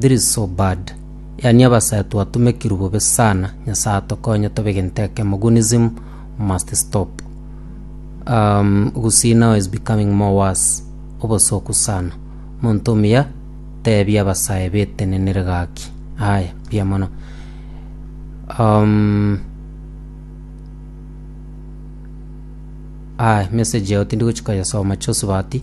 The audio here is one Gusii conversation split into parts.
This is so bad yaani abasae twatumekirwe bobe sana nyasae atokonye tobe gento ekemo gunism must stop um, you see now is becoming more worse obosoku sana monto omuya tebi abasae betenenere gaki aya mbuya mono um, aya message yao tindi gochikoyesoma chosubati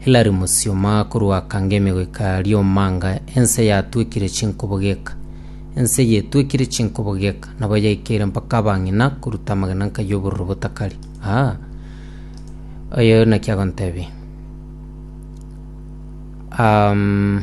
Hilary Musioma korwa Kangemi goika Riomanga ense yatwekire chinkobo geka. Ense eye etwekire chinkobo geka nabo yaikeire mpaka abang'ina koruta amagena nka y'obororo botakari. Aa, oyo naki agontebia. Um,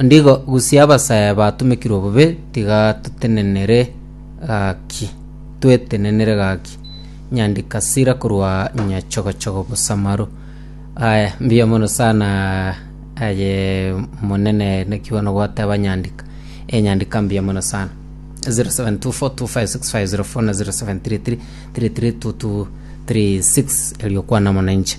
Ondigo gusia abasaya batomekirwe bobe tiga totenenere gaki, twetenenere gaki, nyandika sira korwa nyachogochogo bosamaro. Aya, mbuya mono sana aye monene naki bono gwateba nyandika. Enyandika mbuya mono sana. 0724256504 na 0733332236 erio kwana mwananchi.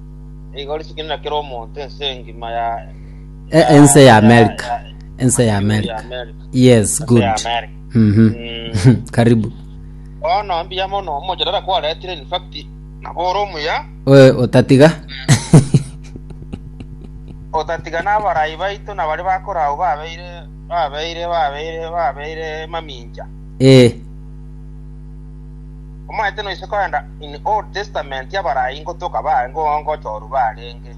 Nigo risekenire kera omonto ense engima ya E- ense ya America. Ense ya America. Yes, good. Mhm. Karibu. Bono mbuya mono omochorera kwaretire in fact nabo ore omuya Oe, otatiga. otatiga n'abarai baito na bari bakorau babeire babeire babeire babeire mamincha Eh, Omanyete noise korenda in Old Testament abarai ngotoka baare ngochoru barenge.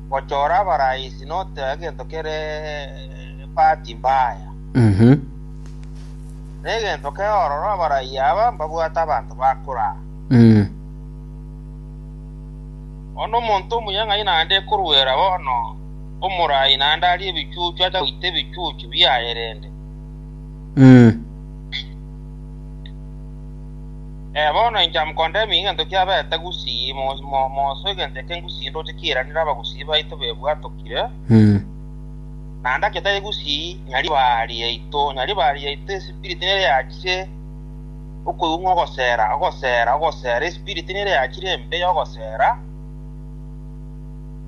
Gochora abarai is not egento kere bahati mbaya. Negento keororo abarai aba mbabwate abanto bakoraa. Bono omonto omuya ng'ai naende ekoruera bono omorai naende arie ebichuchu acha goita ebichuchu biaye rende. Bono inche amkondemia egento kiabete gusii, momoso egento eke ngusii ndoche kiiranere abagusii baito bebwatokire, naende agetari gusii Nyaribari yaito, Nyaribari yaito espirit nere yachire okoigwa ng'a ogosera, ogosera, ogosera, espirit nere yachire embe y'ogosera,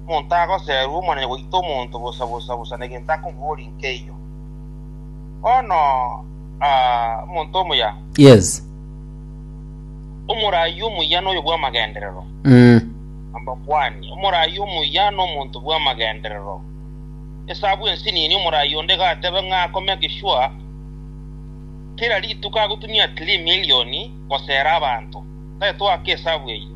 omonto agoserwa omonene goita omonto bosa bosa bosa negento akomoboria nkeiyo. Bono aa, omonto omuya, Yes. omoraai omuya noyo bw'amagenderero, Mm. ambakuani, omoraai omuya nomonto bw'amagenderero. Esabu ensinini omoraai onde gatebe ng'a akome egeswa kera rituko agotumia at least million gosera abanto. Tari twaka esabu eyio.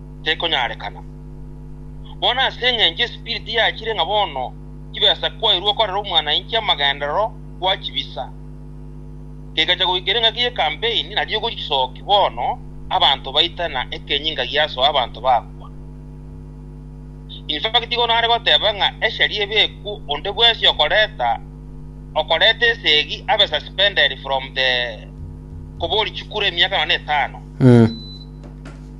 tekonyarekana. Bono ase engencho esipiriti yachire ng'a bono chibesa kwairwe okorera omwanainche amagenderero gwachibisa, kegacha goikera engaki ye campaign na riogo risoki bono abanto baitana ekenyinga giasoa abanto bakwa. Infact igo nare goteba ng'a eshari ebekwo onde bwensi okoreta okoreta esegi abe suspended from the kobori chikura emiaka nonya etano.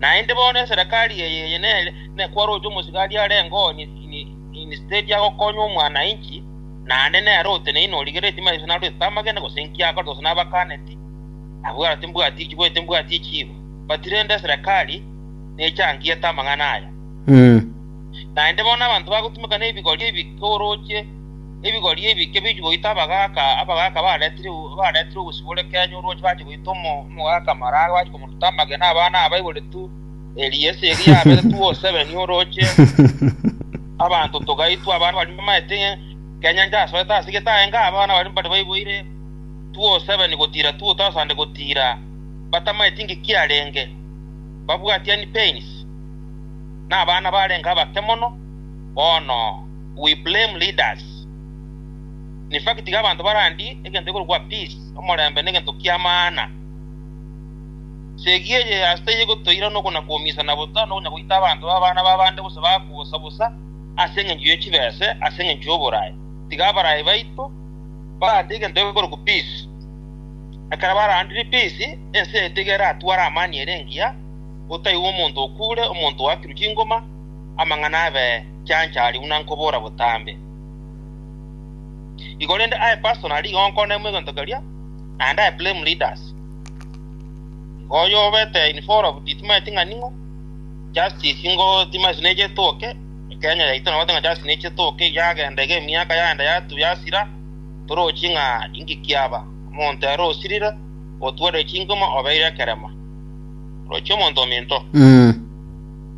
Naende bono eserekari eye eye nere kwaroche omosigari arenge oo instead agokonya omwanainchi, naende nere oteneine origeretie maiso narwete tamagene gose inki akorete gose nabakaneti, abwate timbwati chiboyete mbwati echiigo. But rende eserekari nechangiete amang'ana aya. Naende bono abanto bagotimeka nebigorio ebi koorochie. Ebigori ebike bichia goita abagaaka, abagaaka baretire baretire obosibore ekenyoro orwachia bachia goita omo- omogaaka amararo bachia komoruta amagena abana abaibore tu eria ase eria yabere tu osebeni oroche abanto togaitwa abana baria bamaete kenyancha asoete ase getae ng'a abana baria mbare baiboire tu osebeni gotira tu thousand gotira batamaeti ng'iki arenge babwatiani pains na abana barenge abake mono bono. We blame leaders. In fact tiga abanto barandie egento gekorokwa peace, omorembe negento kia maana. Segi eye ase taiyo egotoira noko na koumisana bosa na okonya goita abanto babe abana b'abande gose baakwe bosa bosa ase engencho ye chibese ase engencho y'oboraai. Tiga abarai baito barandie egento gekorokwa peace. Ekero barandire peace, ense yaito iga eratware amani ere engiya, otaiyo omonto okuure, omonto oakirwe chingoma, amang'ana abe chanchari buna nkobora botambe. Igo rende aye pastor na rigonko ne mwegento keria, naende aye blame leaders. Igo oyo obete in favor of Gitimo eti ng'a ning'o, justice ingo timasi neche etoke, Kenya yaito nabate ng'a justice neche etoke, yagenda iga emiaka yagenda yatu yasira, torochi ng'a inki kiaba. Omonto ere osirire, otwarire chinkuma, obeire ekerema. Orochi omonto ominto. Mm.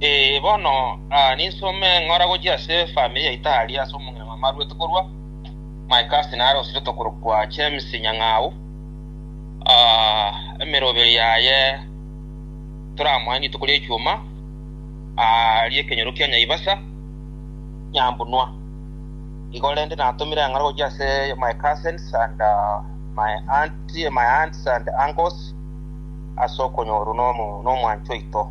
Ee, bono aa ninsome ng'ora gochia ase efamiri ya Itali, ase omong'ina mama arwete korwa my cousin are osiretwe korokwa James Nyang'au, aa emeroberi yaye toramoe rituko ria Echwuma, aa ri'ekenyoro kia Nyaibasa, Nyambunua. Igo rende natomire eng'ora gochia ase my cousins and aa my auntie, my aunts and uncles ase okonyorwa nomo- nomwancha oito.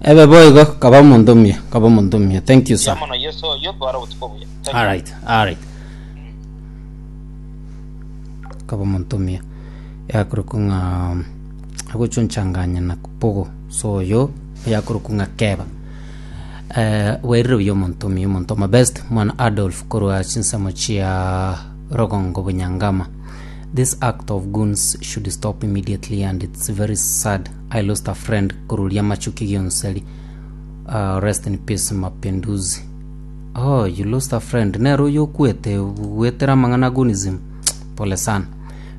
Ebe boigo kaba omonto omuya, kaba omonto omuya. Thank you Buya sir. mono Yesu oyo tware obotuko obuya. Thank you. Alright, alright. Kaba omonto omuya. Yakorokwa ng'a agochonchanganya na kupogo. So oyo yakorokwa ng'a keba. Eh, wairire buya omonto omuya, omonto omo best, mwana Adolf korwa chinsemo chia Rogongo Bunyangama. This act of goons should stop immediately and it's very sad I lost a friend korori amachuki gionseri uh, rest in peace mapinduzi oh you lost a friend nero oyo okwete gwetera amang'ana agonism pole sana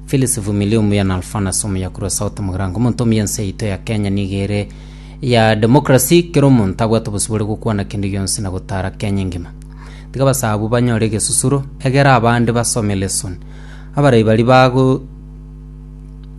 Phyllis Vumilia omuya na Alphanus omuya kurwa South Mugirango omonto omuya ense yaito ya Kenya niga ere ya democracy kera omonto abwate obosibore gokwana kende gionsi na gotara Kenya engima tiga basabu banyore egesusuro egera abande basome lesson abarai bari bago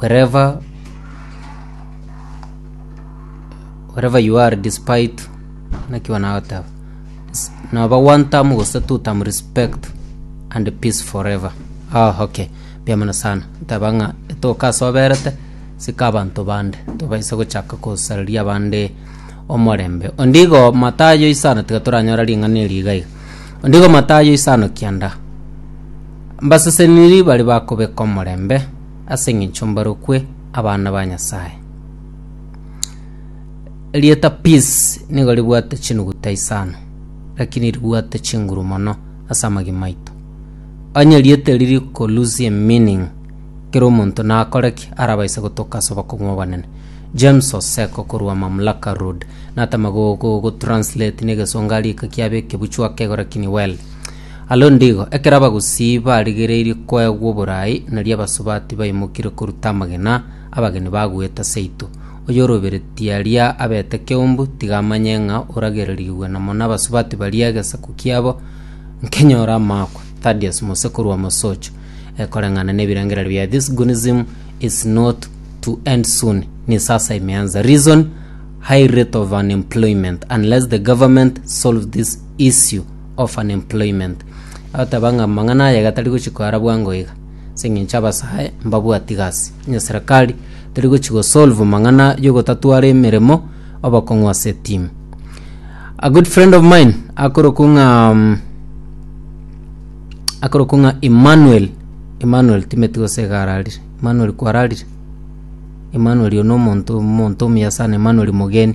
wherever wherever you are despite naki wanagoteba S- noba one term gose two term respect and peace forever ah okay biamana sana taba ng'a etoka ase oberete sika abanto bande tobaise gochaka kosareria abande omorembe ondigo matayo isano tiga toranyora ring'ana eri iga iga ondigo matayo isano kianda Abaseseniri baria bakobeka omorembe ase engencho mbarokwe abana ba Nyasae. Erieta peace nigo ribwate chinuguta isano, lakini ribwate chinguru mono ase amagima aito. Onye erieta eri riko lose a meaning, kera omonto nakore ki arabaise gotoka ase obokong'u obonene? James Oseko korwa Mamlaka Road natema gotranslate na egesongo arika kiabe ekebuchu akegora kini well. Alo ndigo, ekero abagusii barigereirie koegwa oboraai, nario abasubati baimokire korutwa amagena, abageni bagoeta seito. Oyoroberetie aria abete keumbu, tiga amanye ng'a oragererigwe namo nabasubati baria egesaku kiabo nkenyore amaakwa. Thaddeus Mose korwa Mosocho, eh, koreng'ana nebirengererio bia This Gunism is not to end soon ni sasa imeanza. Reason, High rate of unemployment unless the government solve this issue of unemployment. Agoteba ng'a amang'ana aya iga tari gochi koara bwango iga, ase eng'encho abasae mbabwati gasi, onye serikali teri gochi go solve mang'ana yogotatwara emeremo obokong'u ase etimu. A good friend of mine akorokwa ng'a mm, akorokwa ng'a Emmanuel, Emmanuel timeti gose iga ararire, Emmanuel kwararire? Emmanuel oyo na omonto omonto omuya sana Emmanuel Mogeni.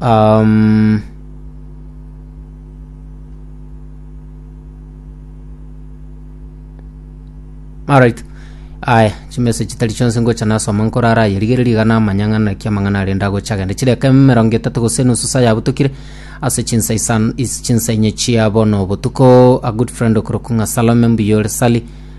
Amen. Alright. Aya, chimese chitari chionse ngocha nasoma nkorara yerigereria igana amanyang'ana kia amang'ana arenda gocha agende chireka emerongo etatu gose nusu saa yabutokire ase chinsa isan is chinsa inye chia bono obotuko a good friend okorokung'a salome mbuyore sali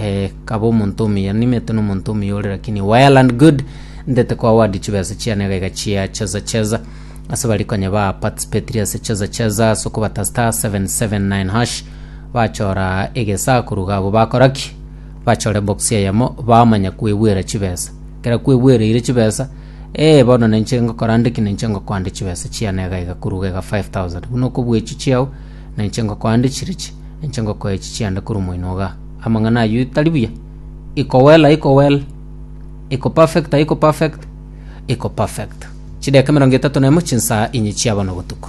Eh, kaba omonto omuya, nimete nomonto omuya ore, lakini well and good ndete kwa wadi chibesa chiane gaiga chia cheza cheza ase bari konya ba participatiri ase cheza cheza ase okobata star 779 hash bachora egesakuru gabo bakoraki bachore box eyemo bamanya kwebwera chibesa kera kwebwereire chibesa eh bono nenche ngokora ndiki nenche ngokwande chibesa chiane gaiga kuruga iga 5000 buna okobwechi chiao Na inche ngokoa nde chirichi, na inche ngokoa echi chiande korwa moino ogaa. Amang'ana ayio tari buya? Iko well, aiko well? Iko perfect, aiko perfect? Iko perfect. Chideka emerongo etato na emo chinsa inye chiaba nobotuko.